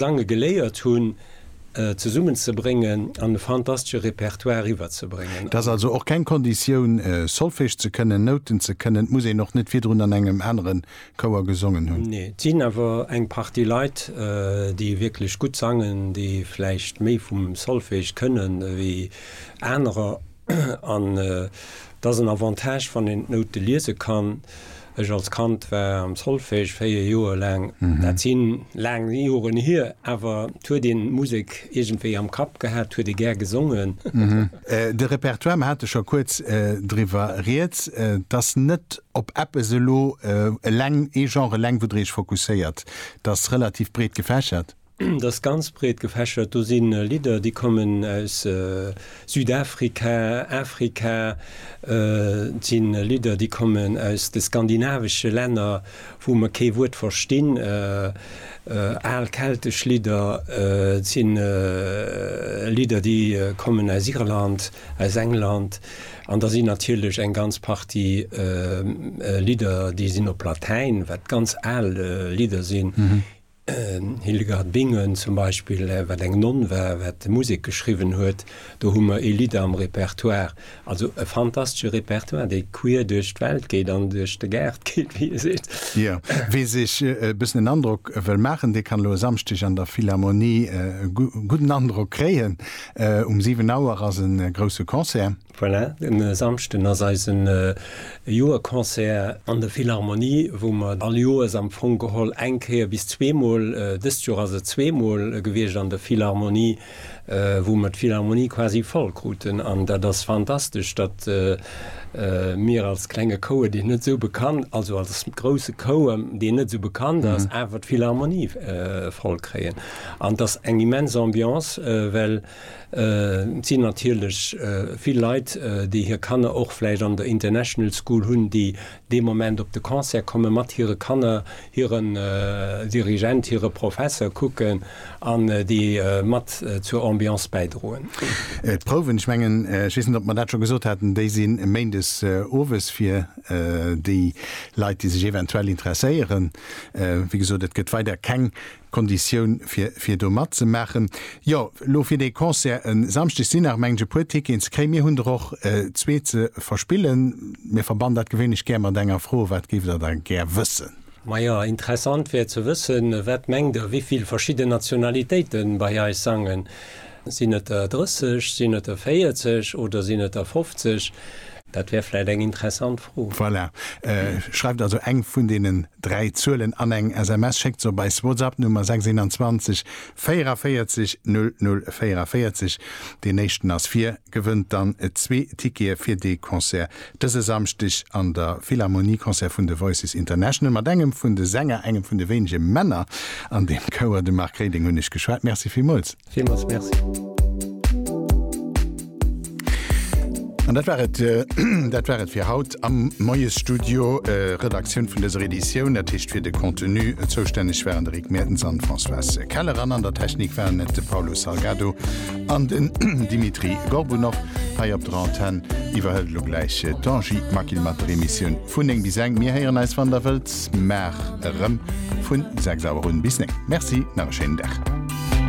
d'Lange geléiert hunn, zesummen ze bréngen an e fantastesche Repertoire eriwwer ze bréngen. Et ass also och keng Konditioun, Solfège ze kënnen, Nouten ze kënnen. Et muss een och net virdrun an engem anere Chouer gesongen hunn. Nee. Et sinn awer eng Partie Leit, déi wierklech gutt sangen, déi vläicht méi vum Solfège kënnen ewéi anerer. An et ass en Avantage, wann een d'Noute liese kann. Ech als Kand war am Solfège véier Joer laang. Dat si laang Joren hier, awer et huet een d'Musek iergendwéi am Kapp gehat, huet ee gär gesongen. De Repertoire, mer hate scho kuerz driwwer rieds, et ass net op eppes elo eleng, ee Genre eleng, wou Der Iech fokusséiert. Et ass relativ breet gefächert. Et ass ganz breet gefächert. Do si Lidder, déi kommen aus Südafrika, Afrika. Et si Lidder, déi kommen aus de skandinavesche Länner, wou mer kee Wuert verstinn, al keltesch Lidder. Et si Lidder, déi kommen aus Irland, aus England. An da sinn natierlech eng ganz Partie Lidder, déi sinn op Latäin, wat ganz al Lidder sinn. Hildegard Bingen zum Beispill, wat eng Nonn war, wat Musek geschriwwen huet, do hu mer ee Lidd am Repertoire. Also e fantastesche Repertoire, dee queer duerch d'Welt geet an duerch de Gaart geet, wéi ee seet. Jo, wee sech e bëssen en Androck wëll maachen, dee kann elo e Samschdeg an der Philharmonie e gudden Androck kréien. Um 7 Auer ass e grousse Concert. Voilà, en Samschden ass eisen Joerconcert an der Philharmonie, wou mer all Joers am Fong geholl eng Kéier bis zweemol, dëst Joer ass et zweemol gewiescht an der Philharmonie, wou mer d'Philharmonie quasi voll kruten. An dat ass fantastesch, datt mir als klenge Chouer, deen net esou bekannt, also als grousse Chouer, deen net esou bekannt ass, awer d'Philharmonie voll kréien. An et ass eng immens Ambiance, well Et sinn natierlech vill Leit, déi hir Kanner och vläicht an der International School hunn, déi dee Moment op de Concert komme mat hire Kanner, hiren Dirigent, hire Professer kucken an déi mat zur Ambiance bäidroen. D'Prouwen, ech mengen, ech weess net, ob mer dat scho gesot haten, déi si méindes owes fir déi Leit, déi sech eventuell interesséieren. Wéi gesot, et gëtt weider keng Konditioun fir fir do matzemaachen. Jo, lo fir dee Concert e Samschdeg sinn nach mengen ech e puer Ticketen ze kréien. Mir hunn der och zwee ze verspillen. Mir verbannen dat gewéinlech gär mat enger Fro, Wat géift der da gär wëssen? Majo, interessant wär ze wëssen, Wat mengt der, wivill verschidden Nationalitéite bei eis sangen? Sinn et der 30, sinn et der 40 oder sinn et der 50? Dat wär vläit eng interessant Fro. Voilà. Schreift also eng vun deenen dräi Zuelen an eng SMS, schéckt se op eis WhatsApp-Nummer 621 44 00 44, deen éischten ass vir, gewënnt dann zwee Tickete fir de Concert dëse Samschdeg an der Philharmonie, Concert vun de Voices International mat engem vun de Sänger, engem vun de wéinege Männer an deem Chouer. De Marc Reding hunn ech geschwat. Merci villmools. Villmools Merci. Dat war et Dat war et fir haut am Moiesstudio. Redaktioun vun dëser Editioun, dat heescht fir de Contenu zoustänneg waren de Rick Meertens an d'Françoise Keller an an der Technik waren et de Paulo Salgado an den Dimitri Gorbunov. Hei op der Antenn iwwerhëlt elo gläich d'Angie Maquil mat der Emissioun vun 9 bis 11. Mir héieren eis, wann Der wëllt, mar erëm vun 6 Auer un. Bis 9. Merci, nach e schéinen Dag.